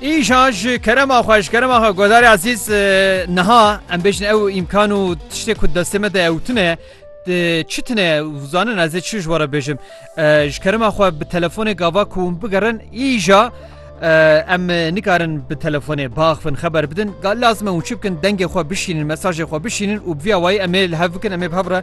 Îşan ji kerema xwe ji kerema xwe godarê ezîz niha em bêjin ew îmkan û tiştê ku destê me de ewtine çi tine zanin ez ê çi ji were bêjim ji kerema xwe bi telefonê gava ku hûn bigerin îja em nikarin bi telefonê baxfin xeber bidin gal lazim hûn çi bikin dengê xwe bişînin mesajê xwe bişînin û bi vîya wayî em ê li hev bikin em ê bi hev re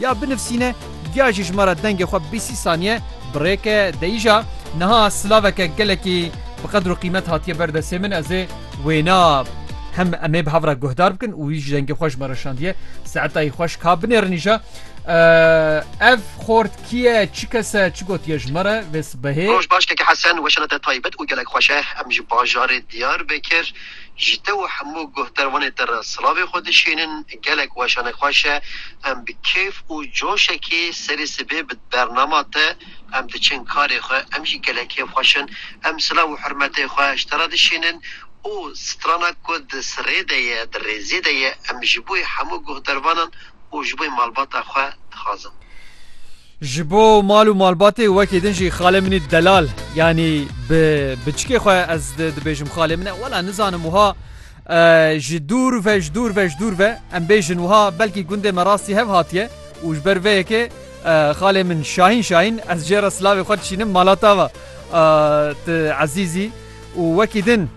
Ya binivsîne ya jî ji me re dengê xwe bê sî saniye birêke deyîja niha silaveke gelekî bi qedr û qîmet hatiye ber destê min ez ê wêna hem em ê bi hev re guhdar bikin û wî ji dengê xwe ji me re şandiye seetayî xweş ka binêrin îja ev xort kî ye çi kes e çi gotiye ji me re vê sibehê. Roj baş keke Hesen weşana te taybet û gelek xweş e em ji bajarê Diyarbekir. Ji te û hemû guhdarvanê te re silavê xwe dişînin, gelek weşanek xweş e, em bi kêf û coşekê serê sibê bi bernama te em diçin karê xwe, em jî gelek kêf xweş in, em silav û hurmetê xwe ji te re dişînin û strana ku di sirê de ye, di rêzê de ye em ji bo hemû guhdarvanan û ji bo malbata xwe dixwazin. Ji bo mal û malbatê wekî din jî xalê min î delal yanî bi biçikê xwe ez dibêjim xalê min e wela nizanim wiha ji dûr ve ji dûr ve ji dûr ve em bêjin wiha belkî gundê me rastî hev hatiye û ji ber vê yekê xalê min şahîn şahîn ez jê re silavê xwe dişînim malatava tu ezîzî Û wekî din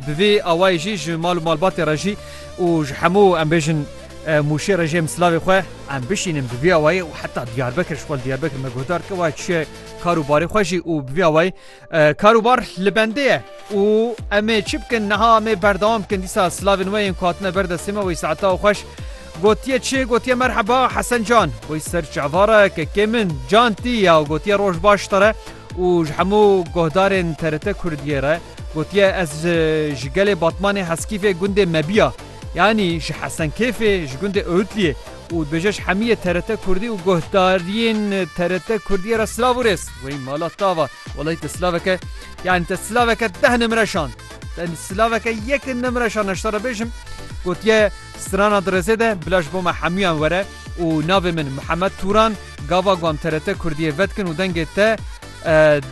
bi vî awayî jî ji mal û malbatê re jî û ji hemû em bêjin Mûşê re jî em silavê xwe em bişînin bi vî awayî û heta Diyarbekir ji xwe li Diyarbekir me guhdar kir wayê çiye kar û barê xwe jî û bi vî awayî kar û bar li bendê ye û em ê çi bikin niha em ê berdewam bikin dîsa silavên we yên ku hatine ber destê me wê saeta xweş gotiye çi gotiye merheba Hesen can wê ser çavara kekê min can tî ya gotiye roj baş te re û ji hemû guhdarên TRT Kurdiyê re gotiye ez ji gelê Batmanê Heskîfê gundê Mebiya yanî ji Hesenkêfê ji gundê Owtliyê û dibêje ji hemiyê TRT Kurdî û guhdariyên TRT Kurdiyê re silav û rêz. Wey mala tava wellahî te silaveke yanî te silaveke deh nimre şand te silaveke yek nimre şand ez ji te re bêjim gotiye strana di rêzê de bila ji bo me hemûyan were û navê min Mihemed Tûran Gava gu em TRT Kurdiyê vedikin û dengê te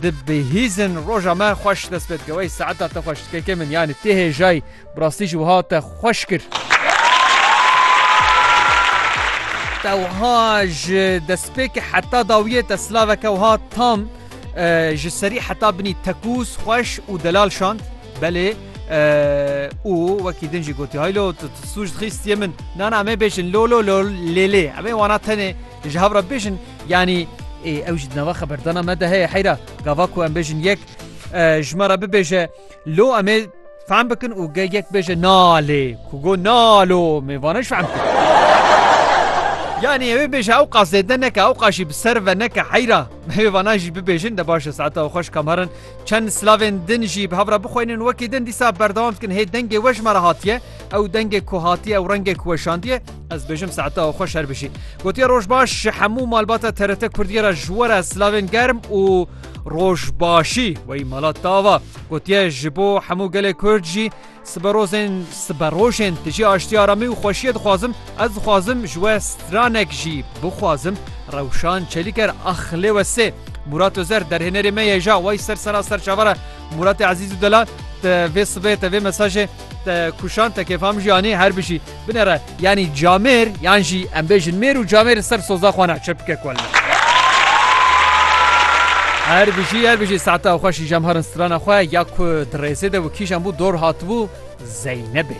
dibihîzin roja me xweş dest pê dike. Wey saeta te xweş KK min yanî tê hêjayî bi rastî jî wiha te xweş kir. Te wiha ji destpêkê heta dawiyê te silaveke wiha tam ji serî heta binî tekûz, xweş û delal şand. Belê û wekî din jî gotî hay lo tu sûc dixî stiyê min na na me bêjin lo lo lo lê lê em ê wana tenê ji hev re bêjin yanî ew jî di nava xeberdana me de heye heyra gava ku em bêjin yek ji me re bibêje lo em ê fehm bikin û ge yek bêje na lê ku go na lo me vana ji fehm yanî ewê bêje ew qasêdne neke ew qaşî bi ser ve neke heyra hêvana jî bibêjin de baş e saeta xweş kam herin Çend silavên din jî bi hev re bixweynin wekî din dîsa berdewam dikin hê dengê we ji me re hatiye ew dengê ku hatiye ew rengê ku weşandiye ez bêjim saeta ew xwe şer bijî gotiye roj baş ji hemû malbata TRT Kurdiye re ji we re silavên germ û roj başî wey mala tava gotiye ji bo hemû gelê Kurd jî Siberozên siberojên tijî aştiya re mî û xweşiyê dixwazim, ez dixwazim ji we stranek jî bixwazim, Rewşan Çelîker Ax lê we sê. Murat Ozer derhênerê me ye ja wey ser sera ser çaver e. Muratê Ezîz û Delal te vê sibê te vê mesajê te kuşand te kêfam jî anî her bijî. Binêre yanî camêr yan jî em bêjin mêr û camêr li ser soza xwe ne çepike ku ne. Her bijî her bijî saeta xweş î jemharin strana xwe ya ku di rêzê de û kîjan bû dor hatibû Zeynebê.